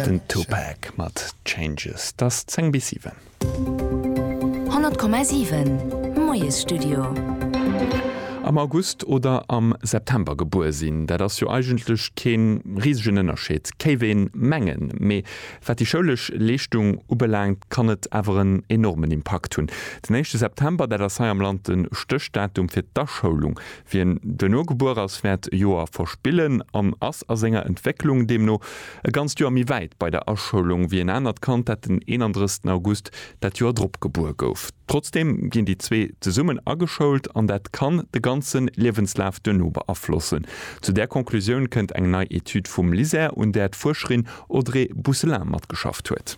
Den Tupac mat Changes. T'ass 10 bis 7. 100,7, Moiesstudio. Am August oder am September gebuer sinn, dat ass jo eigentlech kee risegen Ënnerscheed, kéif ee mengen. Mee wat déi schoulesch Leeschtung ubelaangt, kann et awer en enormen Impakt hunn. Den éischte September, dat ass hei am Land de Stéchdatum fir d'Aschoulung. Wien duerno gebuer ass, wäert e Joer verspillen an ass a senger Entwécklung deemno e ganzt Joer méi wäit bei der Aschoulung wéi en anert Kand, dat den 31 August dat Joer drop gebuer gouf. Trotzdeem ginn déi zwee zesummen ageschoult an dat kann de ganze Liewenslaf duerno beaflossen. Zu där Conclusioun kënnt eng nei Etüd vum LISER, un där d'Fuerscherin Audrey Bousselin matgeschafft huet.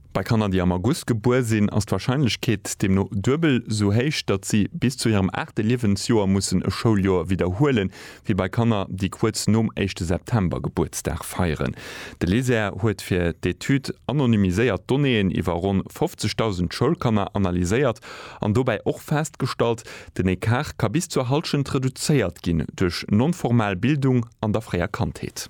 Bei Kanner, déi am August gebuer sinn, ass d'Warscheinlechkeet deemno duebel sou héich, datt si bis zu hirem aachte Liewensjoer mussen e Schouljoer widderhuelen, wéi bei Kanner, déi kuerz nom éischte September Gebuertsdag feieren. De LISER huet fir d'Etüd anonymiséiert Donnéeën iwwer ronn 50.000 Schoulkanner analyséiert an dobäi och festgestallt, den Ecart ka bis zur Hallschent reduzéiert ginn duerch non-formal Bildung an der fréier Kandheet.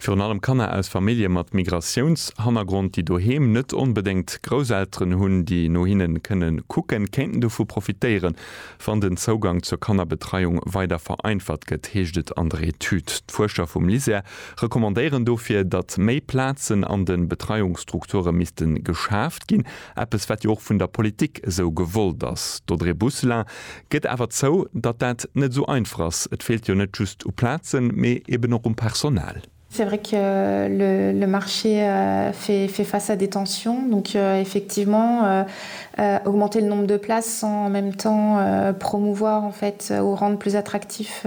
Virun allem Kanner aus Famillje mat Migratiounshannergrond, déi doheem net onbedéngt Grousselteren hunn, déi no hinne kënne kucken, kéinten dovu profitéieren, wann den Zougang zur Kannerbetreiung weider vereinfacht gëtt, heescht et an der Etüd. D'Fuerscher vum LISER recommandéieren dofir, datt méi Plazen an de Betreiungsstrukture misste geschaaft ginn, Eppes wat jo och vun der Politik esou gewollt ass. D'Audrey Bousselin gëtt awer zou, datt dat net esou einfach ass. Et feelt jo net just u Plazen, mee eben och um Personal. C'est vrai que le marché fait face à des tensions, donc effectivement augmenter le nombre de places sans en même temps promouvoir en fait ou rendre plus attractif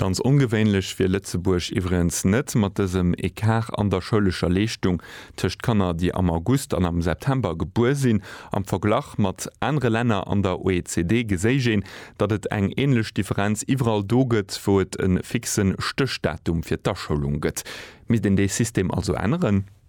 Ganz ongewéinlech wier Lëtzebuerg iwwregens net, mat dësem Ecart an der schoulescher Leeschtung tëscht Kanner, déi am August an am September gebuer sinn. Am Verglach mat anere Länner an der OECD geséich een, datt et eng änlech Differenz iwwerall do gëtt, wou et e fixe Stéchdatum fir d'Aschoulung gëtt. Misst een dee System also änneren?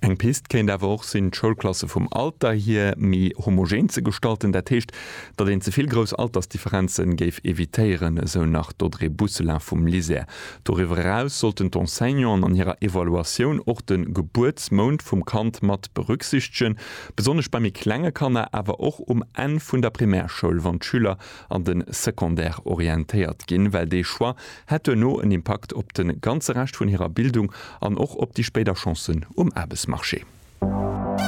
Eng Pist kéint awer och sinn, d'Schoulklasse vum Alter hier méi homogen ze gestalten, dat heescht, datt een ze vill grouss Altersdifferenze géif evitéieren, esou nach d'Audrey Bousselin vum LISER. Doriwwer eraus sollten d'Enseignanten an hirer Evaluatioun och de Gebuertsmount vum Kand mat berücksichtegen, besonnesch bei méi klenge Kanner, awer och um Enn vun der Primärschoul, wann d'Schüler an de Secondaire orientéiert ginn, well dee Choix hätt duerno en Impakt op de ganze Rescht vun hirer Bildung an och op déi spéider Chancen um Aarbechtsmarché.